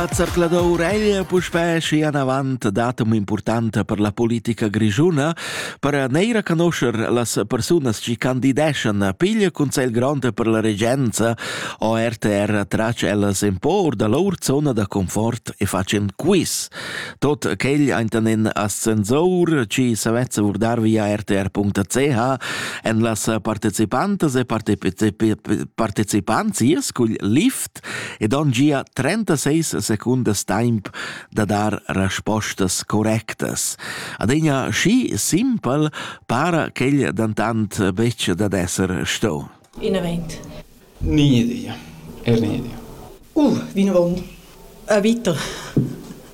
La zerclador Ureglia puspè schi anavant datum importanta per la politica grischuna per neir a conoscer las persunas chi candideschan a piglia consegl grond per la regenza o RTR trac ellas in por da lor zona da confort e facen quiz. Tot quegl eintanen ascensor ci savezza vurdar via rtr.ch en las partecipantas e partecipants ies cugl lift curt ed han gia 36 secundas temp da dar respostas correctas. Adegna schi simpel para quel dentant betg dad esser sto. Inavent. Ni idia. Er ni idia. Uh, vinavon. A vita.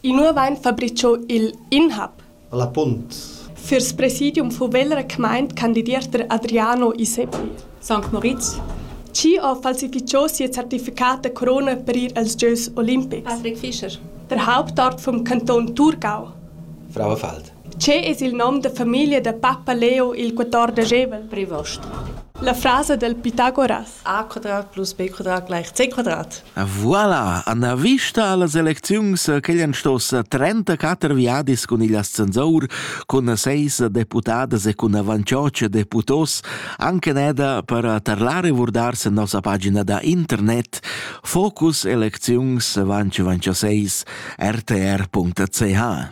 Inua vain fabricho il inhab? A La Punt. Fürs presidium fuv'el requmaint candidiester Adriano Iseppi. Sankt Moritz. Chi ho falsificho sia certificat da corona per ir als gieus olimpics? Patrick Fischer. Der Hauptort vom Kanton Thurgau. Frauenfeld. Che es il nom da famiglia da pappa Leo il quatordeschevel? Prevost. La frasa del Pitagoras. a quadrat plus b quadrat gleich c quadrat. Voilà, Anna vista las elecziuns che han stos 34 viadis cun il ascensor, cun seis deputadas e cun avancioc deputos, anche neda per tarlare vurdar se nossa pagina da internet focuselecziuns vanci vanci 6 rtr.ch.